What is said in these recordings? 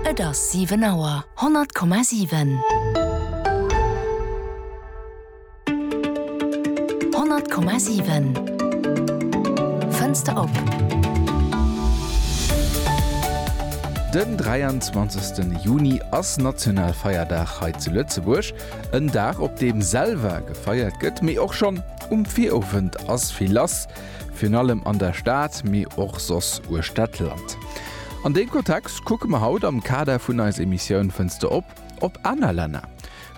Et ass 7 Auer. 100,7. 100,7. Fënster op. Den 23 Juni ass Nationalfeierdag hei zu Lëtzebuerg. En Dag op deem selwer gefeiert gëtt, mee och schonn um Virowend ass vill lass. Virun allem an der Stad, mee och soss uechter d'Land. An dee Kontext kucke mer haut am Kader vun eis Emissioun Fënster op op aner Länner.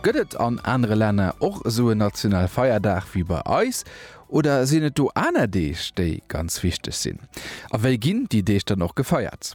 Gëtt et an anere Länner och esou en national Feierdag wéi bei eis? Oder sinn et do aner Deeg, déi ganz wichteg sinn? A wéi ginn déi Deeg dann och gefeiert?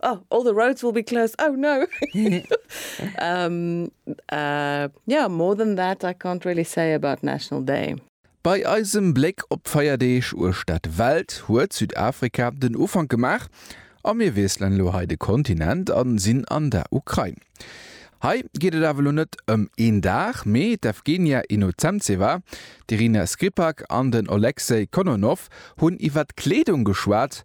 Oh, all the roads will be closed. Oh no. um, uh, yeah, more than that I can't really say about National Day. Bei eisem Bléck op d'Feierdeeg uechter d'Welt huet Südafrika den Ufank gemaach a mir wiesselen elo hei de Kontinent an sinn an der Ukrain. Hei geet et awer elo net ëm een Dag, mee d'Evgenia Inocentseva, d'Irina Skrippak an den Oleksej Kononov hunn iwwer d'Kleedung geschwat,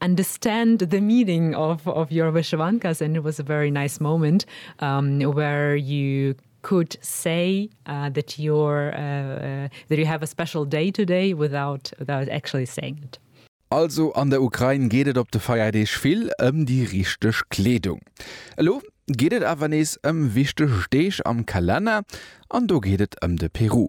understand the meaning of of your Wyshewankas and it was a very nice moment um where you could say uh that you're uh uh that you have a special day today without without actually saying it. Also an der Ukrain geet et op de Feierdeeg vill ëm déi richteg Kleedung. Elo geet et awer nees ëm wichteg Deeg am Kalenner an do geet et ëm de Peru.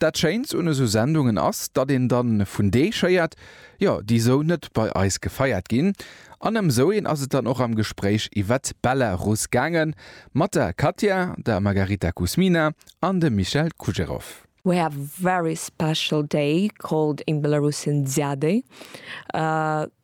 Dat schéint un esou Sendungen ass, datt een dann vun Deeg héiert, jo déi esou net bei eis gefeiert ginn. An ëm esou een ass et dann och am Gespréich iwwert d'Belarus gaange mat der Katja, der Margarita Kuzmina an dem Michel Kujerov. We have a very special day called in Belarusian Dziaday.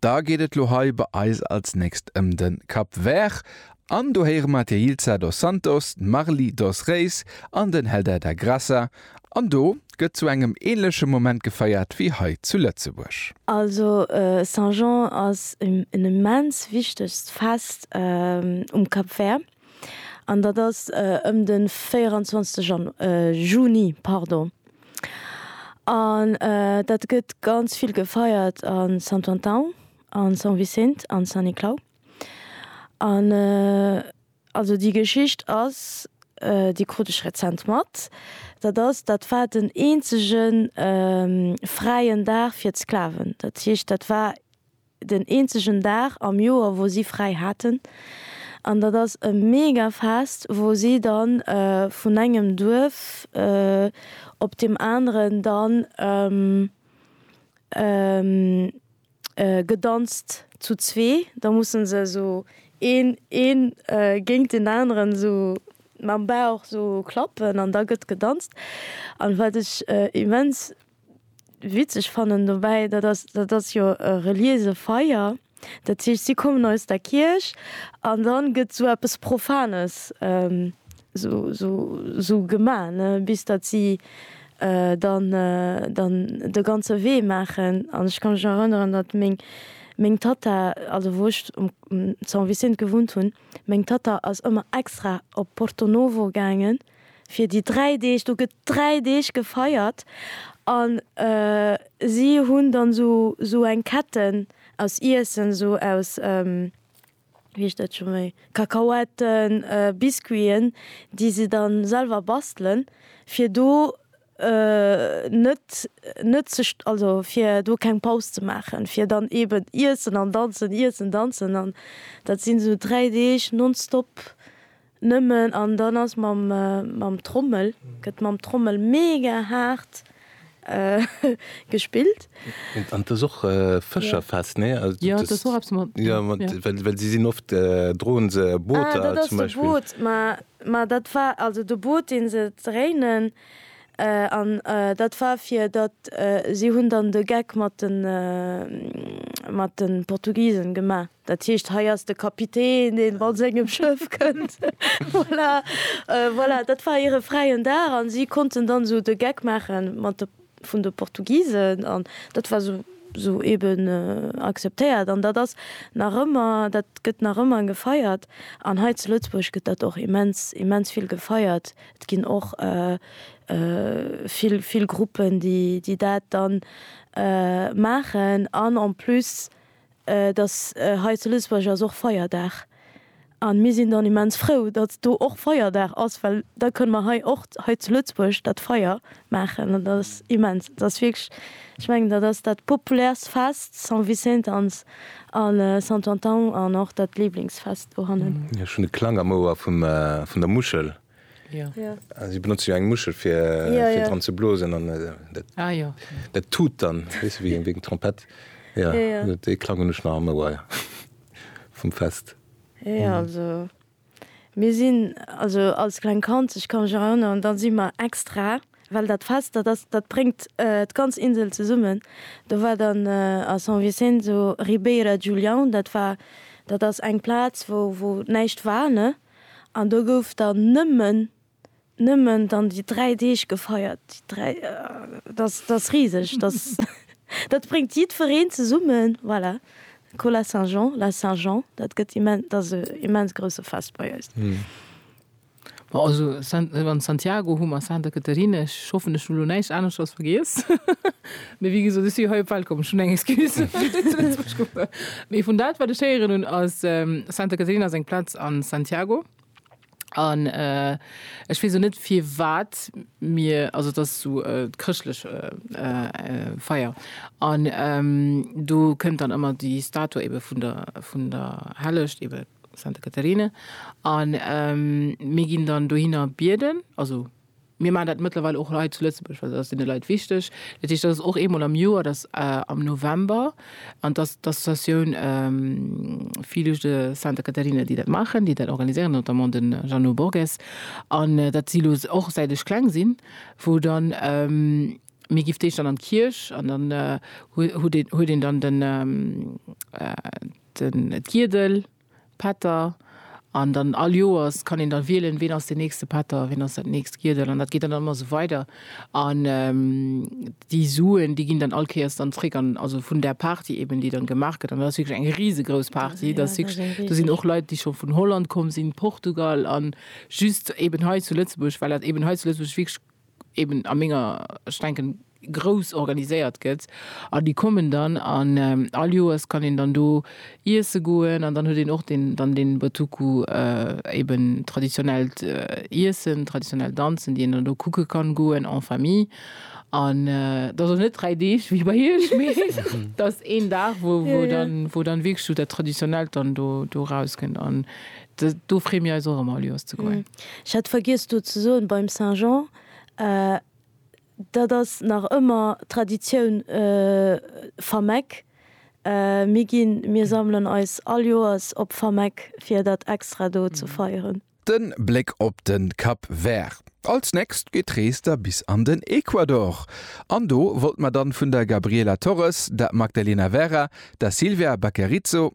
Da geet et lo hei bei eis als nächst ëm de Cap Vert an do héiere mer d'Yeilza dos Santos, d'Marly dos Reis an den Helder da Graça an do gëtt zu engem ähnleche Moment gefeiert wéi hei zu Lëtzebuerg. Also Saint Jean ass en immens wichtegt Fest um Cap Vert. an dat ass ëm de 24 Jan, Juni, pardon. An dat gëtt ganz vill gefeiert a Santo Antão, a São Vicente, a San Niclau. An also déi Geschicht ass, déi krut ech rezent mat, dat ass, dat war den eenzegen fräien Dag fir d'Sklaven. Dat heescht, dat war den eenzegen Dag am Joer wou si fräi haten an dat ass e mega Fest wou si dann vun engem Duerf op dem aneren dann gedanzt zu zwee, da mussen se esou een een géingt den aneren esou mam Bauch esou klappen an da gëtt gedanzt an wat ech immens witzeg fannen dobäi, dat ass, dat ass jo e reliése Feier, dat heescht si kommen aus der Kierch an da gëtt esou eppes Profanes esou, esou, esou gemaach, ne, bis datt si dann, dann de ganze Wee maachen. An ech ka mech nach erënneren, datt meng, meng Tatta, also wou ech um San Vicent gewunnt hunn, meng Tatta ass ëmmer extra op Porto-Novo gaangen, fir déi dräi Deeg, do gëtt, 3 Deeg gefeiert an si hunn dann sou eng Ketten aus Iessen, sou aus, wéi heescht dat scho méi, Kakaoetten, Biscuiten, déi se dann selwer bastelen, fir do net, net ze, also fir do keng Paus ze maachen, fir dann eben iessen an danzen, iessen, danzen an dat sinn sou 3 Deeg nonstop. Nëmmen an dann ass mam mam Trommel gëtt mam Trommel mega haart gespillt. An et ass och Fëscherfest, nee? Jo, et ass och eppes mat. Jo, mat well well si sinn oft droen se Booter zum Beispill. Ah, dat ass de Boot, ma ma dat war also de Boot, dee se dréinen an dat war fir datt si hunn dann de Geck mat de mat de Portugisen gemaach. Dat heescht, hei ass de Kapitän, deen mat sengem Schëff kënnt. Voilà, voilà, dat war hire fräien Dag a si konnten dann esou de Geck maache mat de vun de Portugisen an dat war esou esou eeben akzeptéiert. An dat ass nach ëmmer, dat gëtt nach ëmmer gefeiert. An hei zu Lëtzebuerg gëtt dat och immens, immens vill gefeiert. Et ginn och vill, vill Gruppen, déi dat dann maachen an en plus Et ass hei zu Lëtzebuerg ass och Feierdag an mir sinn dann immens frou, datt do och Feierdag ass, well da kënne mer hei och hei zu Lëtzebuerg dat Feier maachen an dat ass immens. Et ass wierklech, ech mengen dat ass dat populäerst Fest, San Vicent ans a Santo Antão an och dat Liblingsfest dohannen. Ech hunn e Klang am Ouer vum vun der Muschel. Si benotze jo eng Muschel fir dran ze blosen an dat tut dann wéi eng Trompett. Dee Klang hunn ech nach am Ouer vum Fest. Jo also mir sinn also als kleng Kand, ech ka mech erënneren, da si mer extra, well dat Fest dat ass, dat bréngt d'ganz Insel zesummen, do war dann a San Vicenzo Ribeira Julião, dat war, dat ass eng Plaz wou näischt war, ne, An do gouf dann nëmmen, nëmmen dann déi dräi Deeg gefeiert. Déi dräi, dat, dat ass riseg, dat, dat bréngt jiddwereen zesummen. Voilà, Cola Saint-Jean, la Saint-Jean, dat gëtt immen, dat ass e immens grousse Fest bei eis. Bon, also San, wann Santiago hu mer, Santa Catarina, ech hoffen ech hu lo näischt aneschters vergiess. Mee wéi gesot, ech si hei op d'Welt komm, ech hunn eng Excuse, fir zu Lëtzebuerg ze wunnen. Mee vun dat, wat ech héieren hunn, ass Santa Caterina ass eng Plaz a Santiago. An ech weess och net, firwat mir, also et ass esou e chrëschtlech Feier. An do kënnt dann ëmmer déi Statue ebe vun der, vun der Hellecht, ebe Santa Caterina. A mir ginn dann dohinner bieden, also. Mir maachen dat mëttlerweil och hei zu Lëtzebuerg, well dat ass deene Leit wichteg. Dat heescht, dat ass och eemol am Joer, dat ass am November. An dat ass d'Associatioun Filhos de Santa Catarina, déi dat maachen, déi dat organiséieren, notamment de Jeannot Borges. An dat si lo och, säit ech kleng sinn, wou dann, mir gi d'éischt dann an d'Kierch an dann huet een dann den, d'Giedel. Pätter, an dann all Joers kann een dann wielen, ween ass deen nächste Pätter, ween ass dat nächst Giedel, an dat geet dann ëmmer esou weider. An déi Suen, déi ginn dann all Kéiers dann zréck an, also vun där Party eben, déi dann gemaach gëtt, an dat ass wierklech eng risegrouss Party, dat ass wierklech, do sinn och Leit, déi scho vun Holland komm sinn, Portugal, an just eben hei zu Lëtzebuerg, well dat eben hei zu Lëtzebuerg wierklech eben a menger, ech denken, grouss organiséiert gëtt an déi kommen dann an all Joers kann een dann do iesse goen an dann huet een och den dann den Botoku eben traditionellt Iessen, traditionell Danzen, déi een dann do kucke kann goen en famille an et ass och net 3 Deeg wéi bei iech, mee et ass een Dag wou dann wou dann wierklech esou dat Traditionellt dann do do erauskennt an Do free mir eis och emmer lues ze goen. Ech hat vergiess do ze soen, beim Saint-Jean, dat ass nach ëmmer Traditioun Fameck. Mir ginn, mir sammelen eis all Joers op Fameck fir dat extra do ze feieren. Den Bléck op den Cap Vert. Als nächst geet d'Rees da bis an den Ecuador. An do wollt mer dann vun der Gabriela Torres, der Magdalena Vera, der Silvia Baquerizo,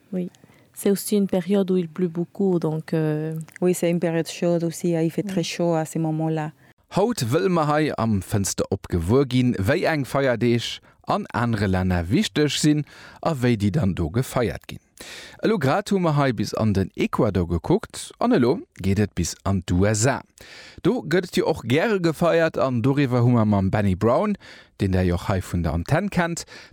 Oui, c'est aussi une période où il pleut beaucoup, donc. Oui, c'est une période chaude aussi, il fait très chaud à ces moments là. Haut wëlle mer hei am Fënster op gewuer ginn, wéi eng Feierdeeg an anere Länner wichteg sinn a wéi déi dann do gefeiert ginn. Elo grad hu mer hei bis an den Ecuador gekuckt an elo geet et bis an d'USA. Do gëtt et jo och gäre gefeiert an doriwwer hu mer mam Benny Brown, deen Der jo och hei vun der Antenn kennt,